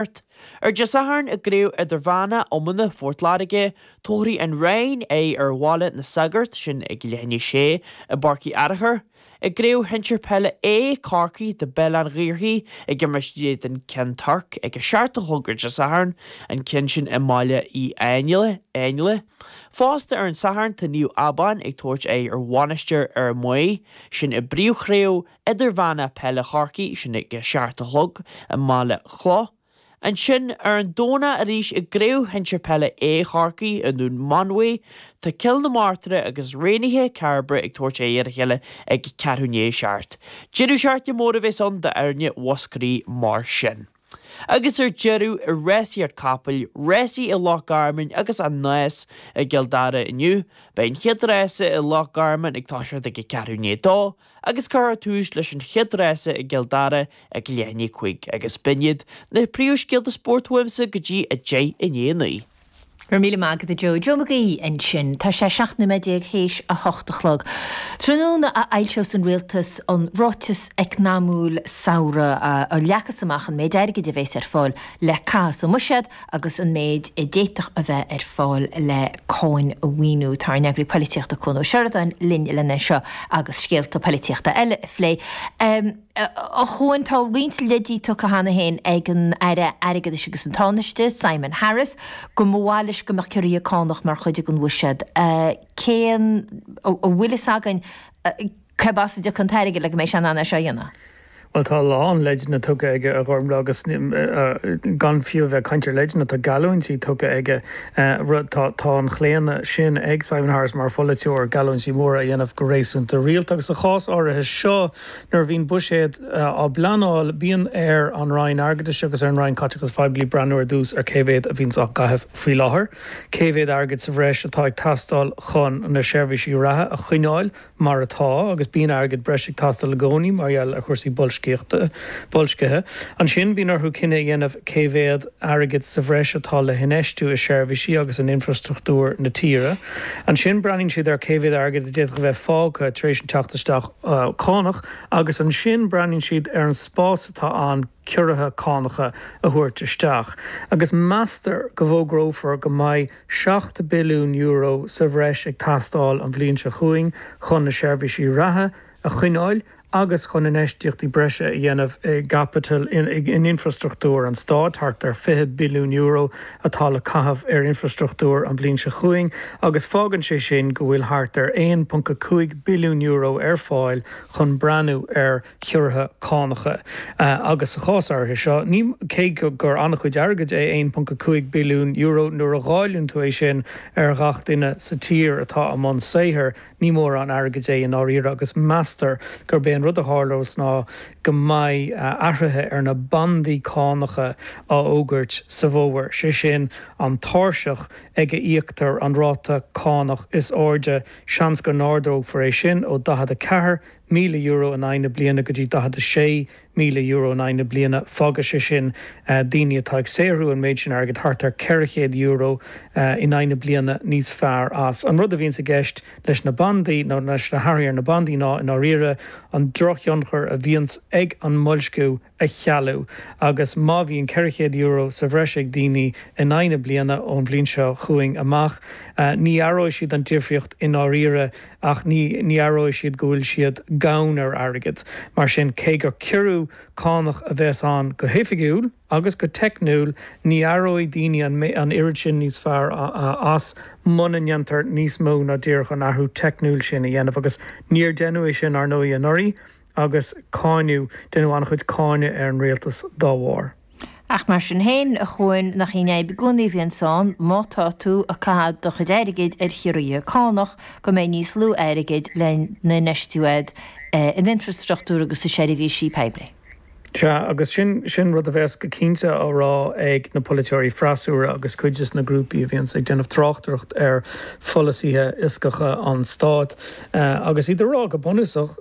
Art. Ar Dé Sathairn i gCraobh Idirmheána Iomána Phort Láirge, tabharfaidh An Rinn aghaidh ar Bhaile na Sagart, sin ag leath i ndiaidh a sé, i bPáirc Uí Fhearachair. I gCraobh Shinsir Peile A, Chorcaí beidh Béal an Ghaorthaidh ag imirt in éadan Cheann Toirc ag a seacht a chlog ar Dé Sathairn, an ceann sin i mBaile Uí Áinle. Fosta ar an Satharn, tá Naomh Abán ag tabhairt aghaidh ar Mhainistir Fhear Maí, sin i bpríomhchraobh Idirmheána Peile Chorcaí, sin ag a seacht a chlog i mBaile Cloch. Ansin ar an Domhnach arís i gCraobh Shinsir Peile A Chorcaí i nDún Mánmhaí, tá Cill na Martra agus Raonaithe Cairbre ag tabhairt aghaidh ar a chéile ag a ceathrú i ndiaidh a seacht. Deireadh seachtaine mór a bheas ann d'fhoirne Mhúscraí mar sin. agus ar deireadh i rásaíocht capall, rásaí i Loch Garman agus An Nás i gCill Dara inniu, beidh an chéad rása i Loch Garman ag toiseacht ag a ceathrú i ndiaidh a dó agus cuirfear tús leis an chéad rása i gCill Dara ag leath i ndiaidh a cúig agus b'in iad na príomhscéalta spóirt uaimse go dtí a deich i ndiaidh a naoi. Go raibh míle maith agat a Joe. Joe McGee ansin. Tá sé 17 nóiméad théis a hocht a chlog. Tráthnóna a fhoilseos an Rialtas an Ráiteas Eacnamaíoch Samhraidh, a leagfas amach an méid airgid a bheas ar fáil le caitheamh sa mbuiséad agus an méid a d'fhéadfadh a bheith ar fáil le cáin a mhaolú. Tá ár n-eagraí polaitíochta Cuan Ó Seireadáin linn lena seo agus scéalta polaitíochta eile a phlé. A Chuain, tá roinnt leidí tugtha cheana féin ag an Aire Airgeadais agus an Tánaiste, Simon Harris, go mba mhaith leis go mbeadh ciorruithe cánach mar chuid den bhuiséad. Cén, an bhfuil fhios againn cé as a dtiocfaidh an t-airgead le go mbeidh sé in ann é seo a dhéanamh? Bhuel, tá a lán leideanna tugtha aige, a Ghormlaigh, agus gan fiú a bheith ag caint ar leideanna, tá geallúintí tugtha aige, rud, tá tá an chlaonadh sin ag Simon Harris mar pholaiteoir, geallúintí móra a dhéanamh go réasúnta rialta agus sa chás áirithe seo, Nuair a bhíonn buiséad á bpleanáil, bíonn ar an Roinn Airgeadais agus ar an Roinn Caiteachais Phoiblí breathnú ar dtús ar cé mhéad a bhíonns á chaitheamh faoi láthair, cé mhéad airgid sa bhreis atá ag teastáil chun na seirbhísí reatha a choinneáil mar atá, agus bíonn airgead breise ag teastáil i gcónaí mar gheall ar chúrsaí boilscithe. Ansin bíonn orthu cinneadh a dhéanamh cé mhéad airgid sa bhreis atá le hinfheistiú i seirbhísí agus in infrastruchtúr na tíre. Ansin breathnaíonn siad ar cé mhéad airgid a d'fhéadfadh a bheith fágtha tar éis an teacht isteach cánach agus ansin breathnaíonn siad ar an spás atá ann ciorruithe cánacha a thabhairt isteach agus meastar go bhfógrófar go mbeidh €7 billiún sa bhreis ag teastáil an bhliain seo chugainn chun na seirbhísí reatha a choinneáil agus chun infheistíochtaí breise a dhéanamh i gcaipiteal, in infrastruchtúr an stáit, thart ar €20 billiún, atá le caitheamh ar infreastruchtúr an bhliain seo chugainn agus fágann sé sin go bhfuil thart ar €1.5 billiún ar fáil chun breathnú ar chiorruithe cánacha agus sa chás áirithe seo, cé gur an-chuid airgid é €1.5 billiún nuair a dháileann tú é sin ar ghach duine sa tír atá i mbun saothair, Ní mórán airgid é i ndáiríre agus meastar gurb é an rud a tharlós ná go mbeidh athruithe ar na bandaí cánacha á fhógairt sa bhfómhar, sé sin an tairseach ag a íoctar an ráta cánach is airde. Seans go n-ardófar é sin ó €44,000 in aghaidh na bliana go dtí míle euro in aghaidh na bliana. Fágfaidh sé sin daoine atá ag saothrú an méid sin airgid, thart ar €400 in aghaidh na bliana, níos fearr as. An rud a bhíonns i gceist leis na bandaí, nó leis na hathruithe ar na bandaí, ná, i ndáiríre, an drochthionchar a bhíonns ag an mboilsciú a chealú. Agus má bhíonn €400 sa bhreis ag daoine in aghaidh na bliana ón bhliain seo chugainn amach, ní aireoidh siad an difríocht i ndáiríre. ach ní aireoidh siad go bhfuil siad gann ar airgead. Mar sin, cé gur ciorrú cánach a bheas ann go hoifigiúil agus go teicniúil, ní aireoidh daoine an oiread sin níos fearr as muna ndéantar níos mó ná díreach an athrú teicniúil sin a dhéanamh, agus níor déanadh é sin, ar ndóigh, anuraidh, agus cáineadh, déanadh an-chuid cáineadh ar an rialtas dá bharr. Ach mar sin féin, a Chuain, nach in an fhadhb i gcónaí a bhíonns ann, má tá tú ag caitheamh do chuid airgid ar chiorruithe cánach, go mbeidh níos lú airgid lena n-infheistiú agat in infreastruchtúr agus i seirbhísí poiblí. Sea, agus sin, sin rud a bheas go cinnte á rá ag na polaiteoirí freasúra agus cuid de na grúpaí a bhíonns ag déanamh tráchtaireacht ar pholasaithe fioscacha an stáit. Agus iad ag rá, go bunúsach,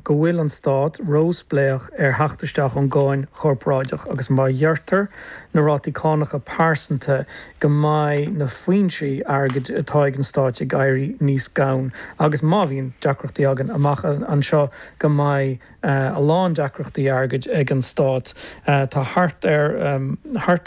go bhfuil an Stát róspléach ar theacht isteach ón gcáin chorparáideach agus má ghearrtar na rátaí cánacha pearsanta go mbeidh na foinsí airgid atá ag an Stát ag éirí níos gann agus má bhíonn deacrachtaí againn amach anseo go mbeidh a lán deacrachtaí airgid ag an Stát. Tá thart ar